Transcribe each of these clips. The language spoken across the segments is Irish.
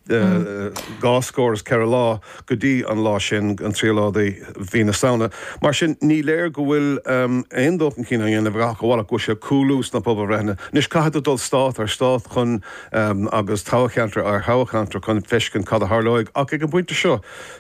dhá scór is ceithre lá go dtí an lá sin, an 3ú lá de mhí na Samhna. Mar sin, ní léir go bhfuil aon dul chun cinn á dhéanamh ach amhail go bhfuil sé ag cúlú sna pobalbhreitheanna. Anois, caithfidh tú dul stát ar stát chun, agus toghcheantar ar thoghcheantar chun feiscint cad a tharlóidh, ach ag an bpointe seo,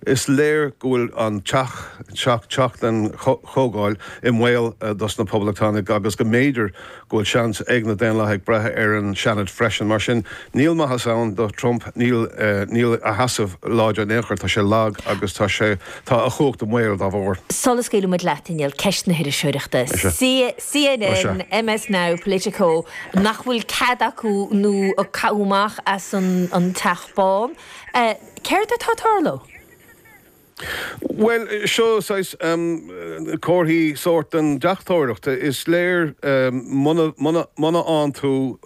is léir go bhfuil an teach, teach den Chomhdháil, i mbaol dos na Poblachtánaigh agus go mb'fhéidir go bhfuil seans ag na Daonlathaigh breith ar an Seanad freisin. Mar sin, níl maitheas ann do Trump, níl, níl a sheasamh láidir in aon chor, tá sé lag agus tá sé, tá a chumhacht i mbaol dá bharr. Sula scaoileann muid leat, a Néill, ceist na hiriseoireachta. CNN, MS Now, Politico, nach bhfuil cead acu nó caite amach as an Teach Bán. Céard atá ag tarlú? Bhuel, seo saghas comharthaí sóirt den deachtóireacht. Is léir muna bhfaigheann tú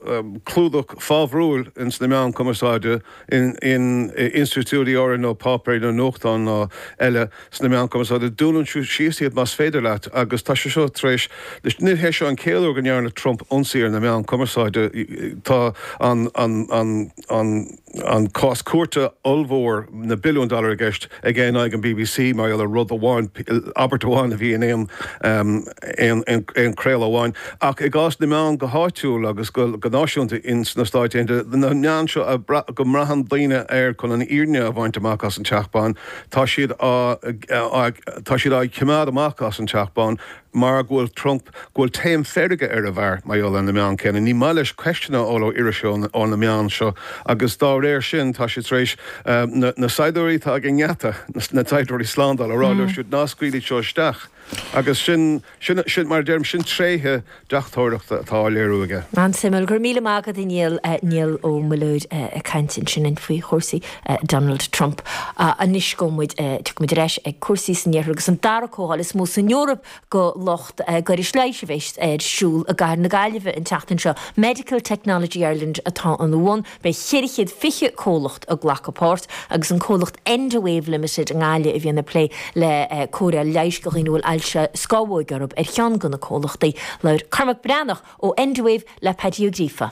clúdach fabhrúil ins na meáin chumarsáide, in institiúidí áirithe nó páipéir nó nuachtáin nó eile sna meáin chumarsáide, dúnann tú síos iad más féidir leat. Agus tá sé seo tar éis, ní hé seo an chéad uair go ndearna Trump ionsaí ar na meáin chumarsáide. Tá an. an cás cúirte ollmhór, na billiúin dollar i gceist aige in aghaidh an bbc mar gheall ar rud amháin, abairt amháin a bhí in aon chraoladh amháin. Ach i gcás na meán go háitiúil agus go náisiúnta ins na Stáit Aontaithe, na meáin seo go mbraitheann daoine air chun an fhírinne a bhaint amach as an Teach Bán, tá siad á, tá siad á gcimeád amach as an Teach Bán. Mar go bhfuil Trump, go bhfuil taom feirge ar an bhfear, mar gheall ar na meáin céanna, ní maith leis ceisteanna a fháil ó iriseoirí ó na meáin seo agus dá réir sin tá sé tar éis na saighdiúirí atá ag an ngeata, na saighdiúirí slándála, a rá leo siúd ná scaoiligí iad seo isteach. Agus sin, sin, sin, mar a deirim, sin tréithe deachtóireachta atá á léiriú aige. An-suimiúil. Go raibh míle maith agat a Néill, Niall Ó Muilleoir ag caint ansin faoi chúrsaí Donald Trump, Anois go muid, tiocfaidh muid ar ais ag cúrsaí san Iarthar agus an dara comhdháil is mó san Eoraip do lucht gairis leighis a bheidh ar siúl i gcathair na Gaillimhe an tseachtain seo. Medical Technology Ireland atá ina bhun, beidh ceithre chéad fiche comhlacht ag glacadh páirt agus an comhlacht Endawave Limited i nGaillimh a bhíonn ag plé le cóireáil leighis do dhaoine a bhfuil ailse scámhóige orthu ar cheann de na comhlachtaí. Labhair Cormac Breathnach ó Endawave le Paddy Ó Gríofa.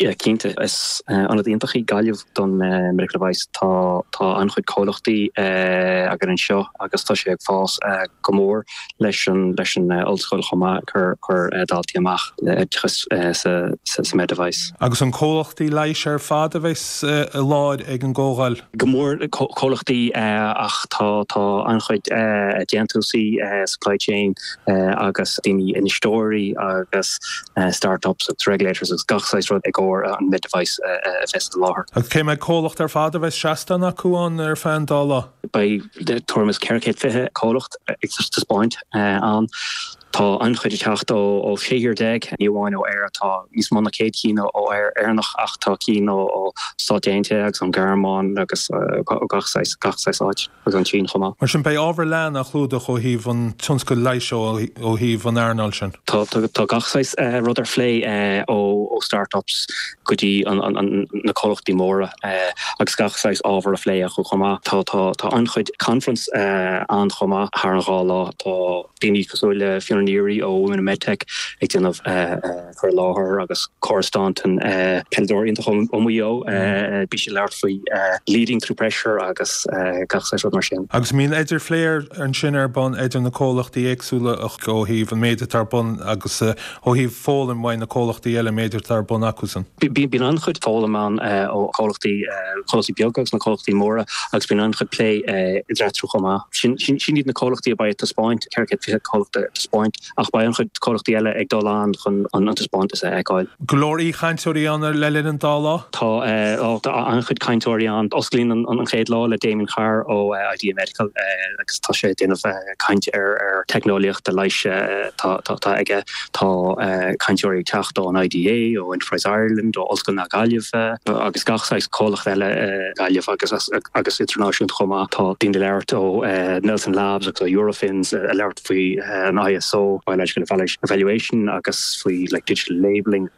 Yeah cinnte, is ionad iontach í Gaillimh don medical device. Tá tá an-chuid comhlachtaí againn anseo agus tá sé ag fás go mór leis an leis an ollscoil chomh maith cur cur daltaí amach le oideachas sa sa med device. Agus an comhlachtaí leighis ar fad a bheidh i láthair ag an gcomhdháil? go mór le comhlachtaí ach tá tá an-chuid déantúsaí, supply chain agus daoine, infheisteoirí agus start-ups agus regulators agus gach saghas rud i gcomhair an med device a fheiceáil sa láthair. Agus cé mhéad comhlacht ar fad a bheas seastán acu ann ar feadh an dá lá? Beidh tuairim is 420 comhlacht ag taispeáint ann. Tá an-chuid ag teacht ó shé thír déag, ní amháin ó Éire. Tá níos mó ná céad ceann acu Éireannach ach tá cinn ó Stáit Aontaithe agus ón Ghearmáin agus ó gach saghas gach saghas áit, agus ón tSín chomh maith. Mar sin, beidh ábhar leathan á chlúdach ó thaobh an tionscail leighis ó thaobh an earnáil sin. Tá gach saghas rud á phlé, ó startups go dtí na comhlachtaí móra, agus gach saghas ábhar á phlé acu chomh maith. Tá an-chuid conference ann chomh maith thar an dhá lá. Tá. daoine cosúil le Fiona Neary ó Women in Medtech ag déanamh cur i láthair agus Cora Staunton, peileadóir iontach ó Mhaigh Eo, bhí sí ag labhairt faoi leading through pressure agus gach saghas rud mar sin. Agus bíonn idirphlé ansin ar bun idir na comhlachtaí éagsúla ó thaobh an méid atá ar bun agus. Ó thaobh foghlaim maidir le comhlachtaí eile an méid atá ar bun acusan. Bíonn an-chuid foghlaim ann ó chomhlachtaí chomhlachtaí beaga agus na comhlachtaí móra agus bíonn an-chuid plé idir eatarthu chomh maith. Sin iad na comhlachtaí a bheidh ag taispeáint, 420 comhlacht ag taispeáint, ach beidh an-chuid comhlachtaí eile ag dul ann chun an taispeántas a fheiceáil. Go leor aoichainteoirí ann le linn an dá lá. Tá an-chuid cainteoirí ann. Osclaíonn an chéad lá le Damien Carr ó Idea Medical agus tá sé ag déanamh. caint ar ar teicneolaíochtaí leighis atá aige. Tá cainteoirí ag teacht ón IDA, ó Enterprise Ireland, ó Ollscoil na Gaillimhe agus gach saghas comhlacht eile i nGaillimh agus idirnáisiúnta chomh maith. Tá daoine ag labhairt ó Nelson Labs agus ó Eurofins ag labhairt faoi an ISO, Biological Evaluation, agus faoi digital labelling.